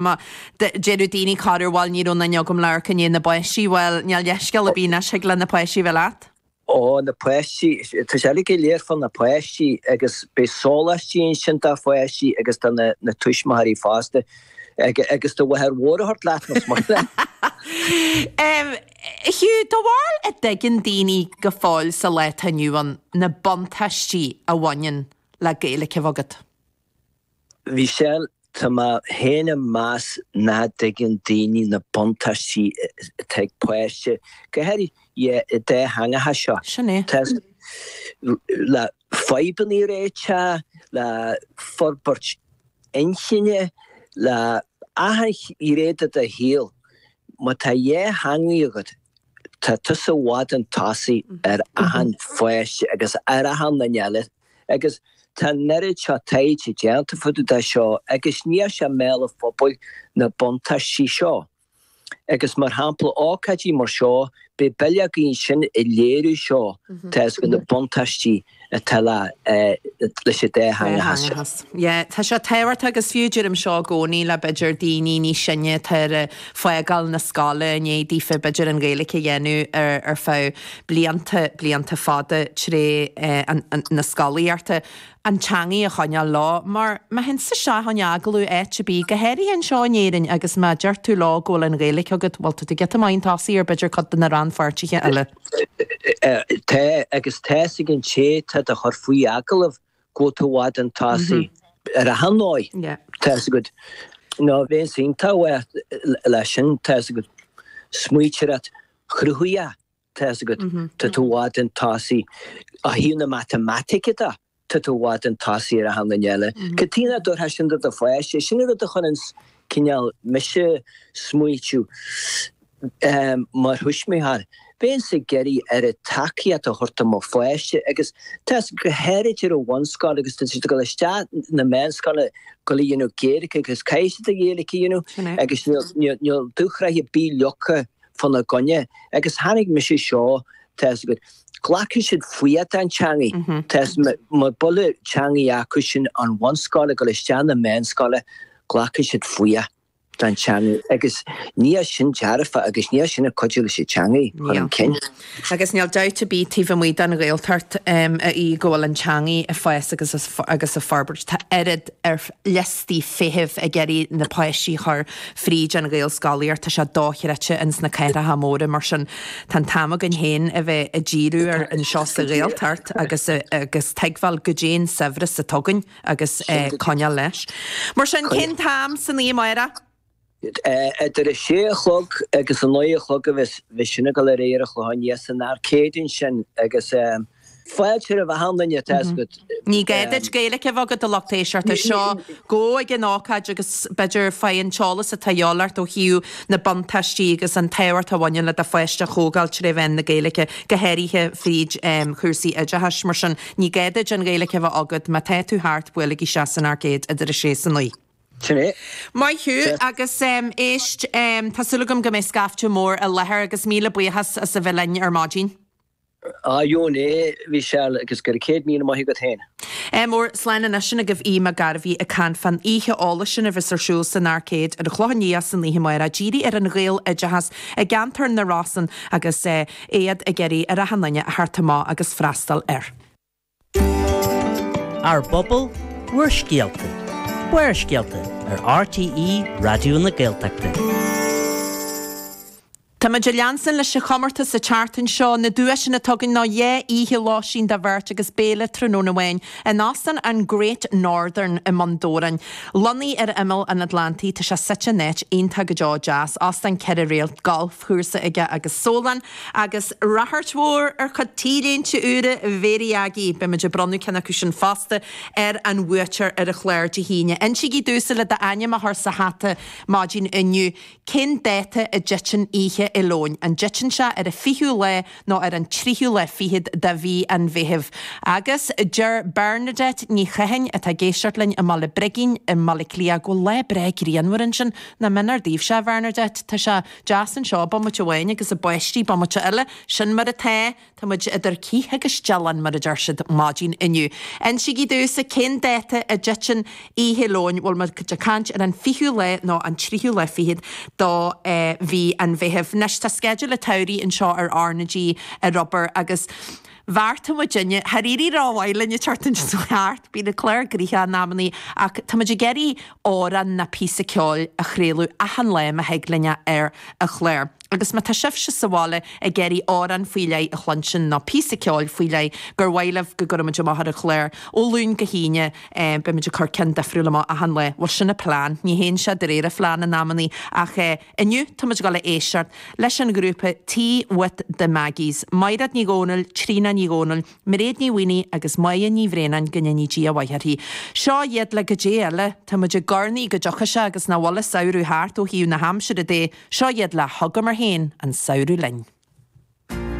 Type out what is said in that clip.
Má déarfadh daoine corruair, bhuel ní raibh aon duine agam le amharc i ndiaidh na bpáistí, bhuel níl leithscéal ar bith anois thig le na páistí a bheith leat. Ó, na páistí, tá sé uilig go léir fá na páistí agus beidh sóláistí ansin do pháistí agus do na na tuismitheoirí fosta. Agus do mháthair mhór a thabhairt leat más maith leat. A Hugh, do bharúil an dtuigeann daoine go fóill sa lá atá inniu ann na buntáistí a bhaineann le Gaeilge a bheith agat? Bhí sé ann. Tá mé féin ag meas nach dtuigeann daoine na buntáistí atá ag páiste, go háirithe an dátheangachas seo. Sin é. Tá le fadhbanna a réiteach, le forbairt inchinne, le achan ghné de do shaol. Má tá dhá theangaidh agat, tá tusa i bhfad chun tosaigh ar achan pháiste agus ar achan duine eile Agus tá an oiread seo taighde déanta fá dtaobh de seo agus níl sé i mbéal an phobail na buntáistí seo. Agus mar shampla ócáidí mar seo beidh bileogaí ansin ag léiriú seo tá's agat na buntáistí atá le leis an dátheangachas. Yeah tá sé tábhachtach agus fiú deirim seo i gcónaí le b'fhéidir daoine níos sine atá ag fágáil na scoile i ndéidh daofa b'fhéidir an Ghaeilge a dhéanamh ar ar feadh blianta, blianta fada, tré na scolaíocht, an teangaidh a choinneáil leo. Mar, má théann tusa isteach in agallamh áit ar bith, go háirithe anseo in Éirinn, agus má deir tú leo go bhfuil an Ghaeilic agat, bhuel, tá tú giota maith chun tosaigh ar b'fhéidir cuid de na rannpháirtithe eile. Tá, agus tá's ag an té atá do chur faoi agallamh go bhfuil tú i bhfad chun tosaigh ar achan dóigh, tá's agat. Nó bheadh an-tábhacht leis sin, tá's agat. Smaointeoireacht chruthaitheach. Tá's agat, tá tú i bhfad chun tosaigh. Ó thaobh na matamaitice de, tá tú i bhfad chun tosaigh ar achan duine eile. Cad tuige nach dtabharfá sin do do pháiste? Is sin an rud a chuireann cineál mise ag smaoitiú mar thuismitheoir. Bheinnse ag iarraidh a oiread tacaíocht a thabhairt do mo pháiste agus tá's agat, go háirid ar an bhunscoil agus tá siad ag dul isteach chun na meánscoile, ag dul a dhéanamh Gaeilge agus caithfidh siad an Ghaeilge a dhéanamh agus níl dúshraith ar bith leagtha fána gcoinne agus chonaic mise seo tá fhios agat glacfaidh siad fuath don teangaidh tá fhios mura bhfuil an teangaidh acu insan bhunscoil ag gabháil isteach chun na meánscoile glacfaidh siad fuath don teangaidh agus níl sin dearfach agus níl sin ag cuidiú leis an teangaidh a chur chun cinn. Agus níl dabht ar bith taobh amuigh den Ghaeltacht, a Aoidh, go bhfuil an teangaidh ag fás agus ag forbairt. Tá oiread ar liostaí feithimh ag iarraidh na páistí chur fríd an Ghaelscolaíocht, tá sé dochreidte ins na cathracha móra, mar sin tá an t-am againn féin a bheith ag díriú air anseo sa Ghaeltacht agus agus tuigbheáil goidé an saibhreas atá againn agus coinneáil leis. Mar sin, cén t-am san oíche amáireach? Idir a sé a chlog agus a naoi a chlog a bheas sin ag dul ar aghaidh ar an Chlochán Liath san Arcade ansin agus fáilte roimh achan duine teacht isteach. Ní gá duit Gaeilge a bheith agat, a Lucht Éisteachta. Seo go ag an ócáid agus b'fhéidir faigh an t-eolas atá a dhíobháil ort ó thaobh na buntáistí agus an tábhacht a bhaineann le do pháiste a thógáil tré mheán na Gaeilge, go háirithe fríd chúrsaí oideachais. Mar sin, ní gá duit an Ghaeilge a bheith agat. Má tá tú thart, buailigí isteach san Arcade idir a sé 's a naoi. Sin é. Maith thú, agus éist, tá súil agam go mbeidh scaifte mór i láthair agus míle buíochas as a bheith linn ar maidin. Ah sin é, a Mhichelle, agus gura céad míle maith agat féin. Mór, slán anois sin agaibh Aodh Mac Gairbheith ag caint fán oíche eolais sin a bheas ar siúl san Arcade ar an Chlochán Liath san oíche amáireach, dírithe ar an Ghaeloideachas i gceantar na Rosann agus iad ag iarraidh ar achan duine a theacht amach agus freastal air. Ár bpobal, bhur scéalta. Barrscéalta ar RTÉ Raidió na Gaeltachta. Táimid ag leanstan leis an chomórtas sa tseachtain seo. Na duaiseanna atá againn ná dhá oíche lóistín do bheirt agus béile tráthnóna amháin in Óstán an Great Northern i mBun Dobhráin. Lonnaithe ar imeall an Atlantaigh, tá sé suite in áit iontach go deo deas. Óstán ceithre réalt, galf. chúrsa aige agus sólann agus ráchairt mhór ar chuid T-léinte úra Mhary Aggie. Beimid ag bronnadh ceann acu sin fosta ar an bhuaiteoir ar an chlár Dé hAoine. Insígí domhsa le d'ainm a chur sa hata maidin inniu. Cén dáta a dtiteann Oíche Fhéile Eoin? An dtiteann sé ar an 20ú lá? nó ar an tríú lá fichead de mhí an Mheithimh agus deir Bernadette Ní Chatháin atá ag éisteacht linn i mBaile Brigín i mBaile Átha Cliath go bhfuil lá breá grianmhar ansin. Nach méanar daoibhse, a Bhernadette, tá sé deas anseo bomaite amháin agus ag báistí bomaite eile, sin mar atá, tá muid idir cith agus dealán mar a deir siad maidin inniu. Insígí domhsa cén dáta a dtiteann Oíche Fhéile Eoin, bhfuil muid ag caint ar an 20ú lá nó an tríú lá fichead do mhí an Mheithimh. Anois tá sceideal an tsamhraidh anseo ar R na G ar obair agus bheartaigh muid inniu, dháiríre ba mhaith linn ag teacht anois ó cheart, bíonn an clár gnoitheach in amannaí ach tá muid ag iarraidh amhrán nó píosa ceoil a chraoladh achan lá má thig linn é ar an chlár. Agus má tá sibhse sa bhaile ag iarraidh amhrán faoi leith a chluinstin nó píosa ceoil faoi leith gur mhaith libh go gcuirfimid amach ar an chlár, ó Luan go hAoine, beimid ag cur ceann difriúil amach achan lá. Bhuel, sin an plean. Ní théann sé de réir an phlean in amannaí, ach inniu táimid ag dul a éisteacht leis an ghrúpa T with the Maggies, Maighread Ní Dhomhnaill, Tríona Ní Dhomhnaill, Mairéad Ní Mhaonaigh agus Moya Ní Bhraonáin, go ndéanaí Dia a mhaith uirthi. Seo iad le go dé eile, tá muid ag urnaí go dtiocfaidh sé agus nach bhfuil an samhradh thart ó thaobh na haimsire de, seo iad le Thugamar Féin an Samhradh Linn.